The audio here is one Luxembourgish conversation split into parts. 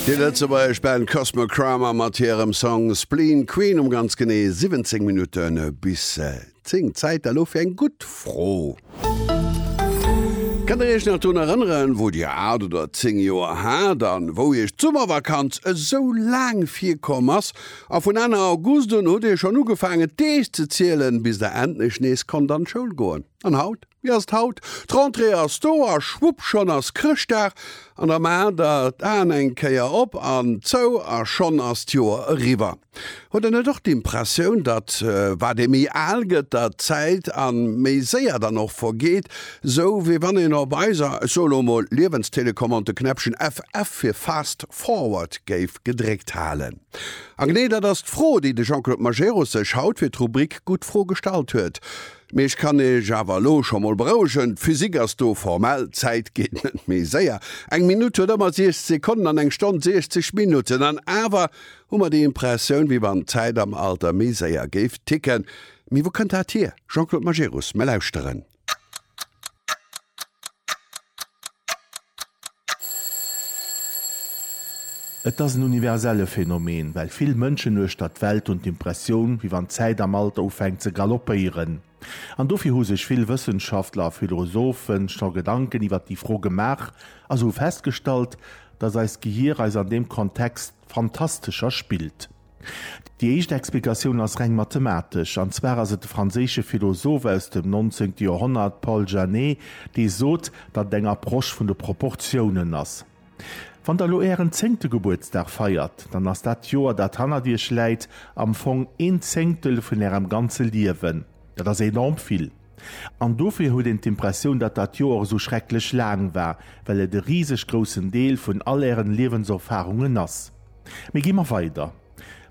Déi lëtzebuergesch Band Cosmo Kramer mat hirem Song Spleen Queen um ganz genee 17 Minutten bis 10. Zäit elo fir eng gutt Fro. Kënnt der Iech nach drun erënneren, wou Dir 8 oder 10 Joer hat an wou Iech d'Summervakanz esou laang virkomm ass? A vun Enn August un hutt Dir schonn ugefaangen d'Deeg ze zielen, bis Der endlech nees konnt an d'Schoul goen. An haut? Wéi ass d'haut? D'Rentrée ass do a schwupp schonn ass Chrëschtdag an da maacht der d'Aen eng Kéier op an zou a schonn ass d'Joer eriwwer. Huet der net och d'Impressioun, datt wat ee méi al gëtt, datt d'Zäit an méi séier dann och vergeet, sou wéi wann een op eiser, ech soe lo mol, Liewenstelecommande de Knäppchen FF fir Fast Forward géif gedréckt halen? A genee dat ass d'Fro, déi de Jean-Claude Majerus sech haut fir d'Rubrik Gutt Fro gestallt huet. Mee ech kann iech awer elo scho mol berouegen, d'Physik ass do formell, d'Zäit geet net méi séier. Eng Minutt huet ëmmer 60 Sekonnen an eng Stonn 60 Minutten. An awer hu mer déi Impressioun, wéi wann d'Zäit am Alter méi séier géif ticken. Mee wou kënnt dat hier? Jean-Claude Majerus, Mä lauschteren. Et ass en universelle Phänomen, well vill Mënschen uechter d'Welt hunn d'Impressioun, wéi wann d'Zäit am Alter ufänkt ze galoppéieren. An dofir hu sech vill Wëssenschaftler a Philosophe scho Gedanken iwwer déi Fro gemaach a se hu festgestallt, datt eist Gehier eis an deem Kontext fantastescher spillt. Déi éischt Explikatioun ass reng mathematesch, an zwar ass et de franséische Philosoph aus dem nonzéngte Joerhonnert Paul Janet, dee sot, datt et eng Approche vun de Proportiounen ass. Wann der elo ären zéngte Gebuertsdag feiert, dann ass dat Joer, dat hannert iech läit, am Fong een Zéngtel vun ärem ganze Liewen. Dat ass enorm vill. An dofir huet een d'Impressioun, datt dat Joer esou schrecklech laang war, well et e riseg groussen Deel vun all Ären Liewenserfarungen ass. Mee gi mer weider,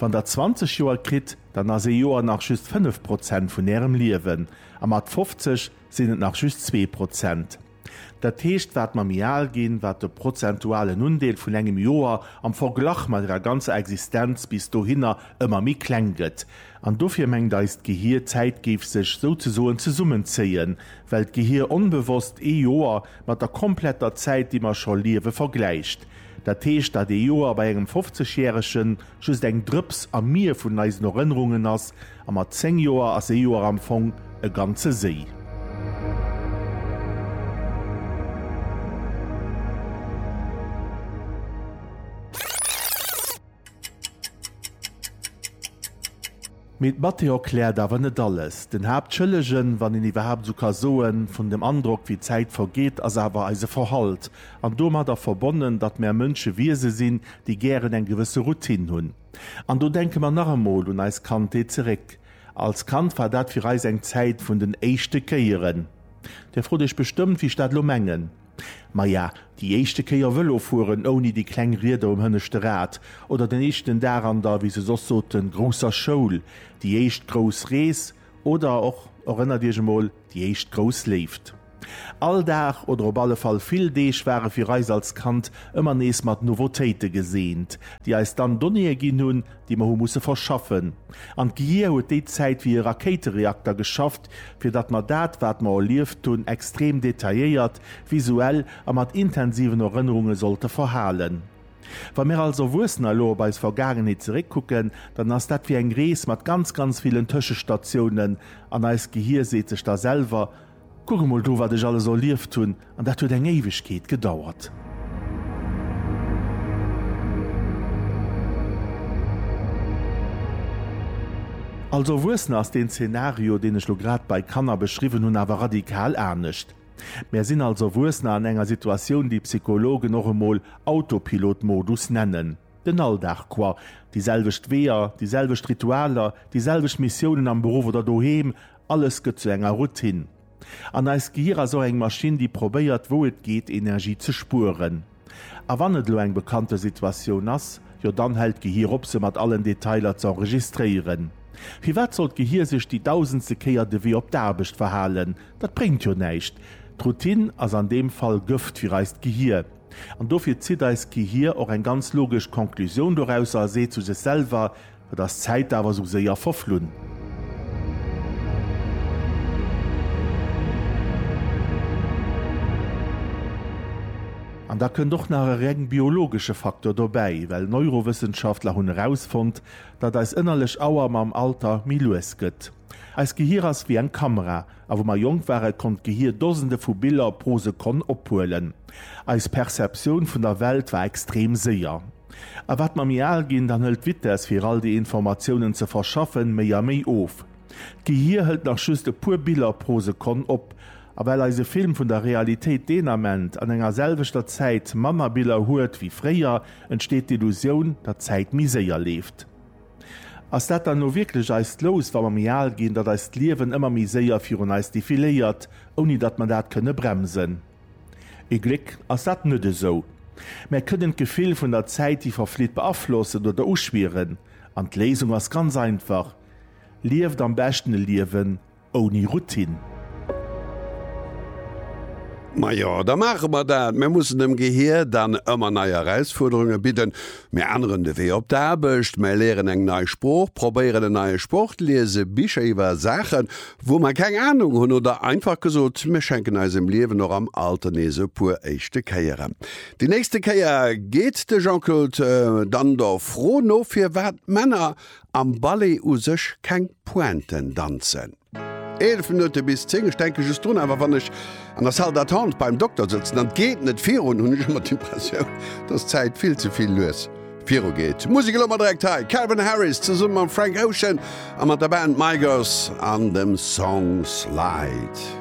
Wann Der 20 Joer kritt, dann ass ee Joer nach just 5 Prozent vun Ärem Liewen, a mat 50 sinn et nach just zwee Prozent. Dat heescht, wat mer méi al ginn, wat de prozentualen Undeel vun engem Joer am Verglach mat ärer ganzer Existenz bis dohinner ëmmer méi kleng gëtt. An dofir mengt eist Gehier, d'Zäit géif sech souzesoen zesummenzéien, well d'Gehier onbewosst ee Joer mat der kompletter Zäit, déi mer scho liewe, vergläicht. Dat heescht, datt ee Joer bei engem Fofzegjäregen just eng Drëps am Mier vun eisen Erënnerungen ass, A mat 10 Joer ass ee Joer am Fong e ganze Séi. Mee d'Mathé erkläert awer net alles. Den Haaptschëllegen, wann een iwwerhaapt esou ka soen, vun dem Androck, wéi d'Zäit vergeet, ass awer eise Verhalt. An domadder verbonnen, datt mär Mënsche Wiese sinn, déi gären eng gewësse Routine hunn. An do denke mer nach emol un eis Kandheet zeréck. Als Kand war dat fir eis eng Zäit vun den éischte Kéieren. Dir frot iech bestëmmt, wéi ech dat elo mengen. Maja, déi éischte Kéier Vëlo fueren ouni déi kleng Rieder um hënneschte Rad, oder den éischten Dag an der, wéi se soss soten, grousser Schoul, déi éischt grouss Rees, oder och, erënnert iech emol, Déi éischt grouss Léift. All Dag oder op alle Fall vill Deeg ware fir eis als Kand ëmmer nees mat Nouveautéite geseent, déi eis dann Donnéeë ginn hunn, déi mer hu musse verschaffen. An d'Gehir huet déi Zäit wéi e Rakéitereakter geschafft, fir datt mer dat, wat mer erlieft hunn, extrem detailléiert, visuell a mat intensiven Erënnerunge sollte verhalen. Wa mir als Erwuessener elo op eis Vergaangenheet zeréckkucken, dann ass dat wéi eng Rees mat ganz, ganz villen Tëschestatiounen an eist Gehier seet sech da selwer, Kuck emol do, wat ech alles erlieft hunn, an dat huet eng Éiwegkeet gedauert. Als Erwuessener ass deen Zenario, deen ech elo grad bei Kanner beschriwwen hunn, awer radikal anescht. Mär sinn als Erwuessener an enger Situatioun, déi Psychologen och emol Autopilot-Modus nennen. Den Alldag quoi, déi selwecht Weeër, déi selwecht Ritualer, déi selwecht Missiounen am Beruff oder doheem, alles gëtt zu enger Routine. An eist Gehir ass och eng Maschinn, déi probéiert, wou et geet, Energie ze spueren. A wann et elo eng bekannte Situatioun ass, jo dann hält d'Gehir op se mat allen Detailer z'enregistréieren. Firwat soll d'Gehir sech déi dausendste Kéier de Wee op d'Aarbecht verhalen? Dat bréngt jo näischt. D'Routine ass an deem Fall Gëft fir eist Gehir. An dofir zitt eist Gehir och eng ganz logesch Conclusioun dorausser a seet zu sech selwer, Et ass d'Zäit awer sou séier verflunn. An da kënnt och nach e reng biologesche Faktor dobäi, well Neurowëssenschaftler hunn erausfonnt, datt eis ënnerlech Auer mam Alter méi lues gëtt. Eist Gehier ass wéi eng Kamera, A wou mer jonk waren, konnt d'Gehir Dosende vu Biller pro Sekonn ophuelen. Eis Perceptioun vun der Welt war extrem séier. A wat mer méi al ginn, dann hëlt d'Vitess, fir all déi Informatiounen ze verschaffen, méi a méi of. D'Gehir hëlt nach just e puer Biller pro Sekonn op. A well eise Film vun der Realitéit deen Ament an enger selwechter Zäit manner Biller huet wéi fréier, entsteet d'Illusioun, datt d'Zäit méi séier leeft. Ass dat dann elo wierklech eist Lous, wa mer méi al ginn, datt eist Liewen ëmmer méi séier virun eis defiléiert, ouni datt mer dat kënne bremsen? Ee Gléck ass dat net esou. Mär kënnen d'Gefill vun der Zäit, déi verflitt, beaflossen oder uschwieren. An d'Léisung ass ganz einfach, Lieft am beschten e Liewen, ouni Routine. Majo, da maache mer dat. Mir mussen dem Gehier dann ëmmer nei Erausfuerderunge bidden. Mir änneren de Wee op d'Aarbecht, mir léieren eng nei Sprooch, probéieren en neie Sport, liese Bicher iwwer Saachen, wou mer keng Anung hunn oder einfach gesot, mir schenken eisem Liewen och am Alter nees e puer éischte Kéieren. Déi nächste Kéier geet de Jean-Claude dann der Fro no, firwat Männer am Ballet u sech keng Pointen danzen. 11 Minutte bis 10, ech denken just drun awer wann ech an der Salle d'attente beim Dokter sëtzen an d'geet net virun, hunn ech ëmmer d'Impressioun dass d'Zäit vill ze vill lues virugeet. Musek elo mar direkt hei, Calvin Harris zesummen mam Frank Ocean a mat der Band Migos an dem Song Slide.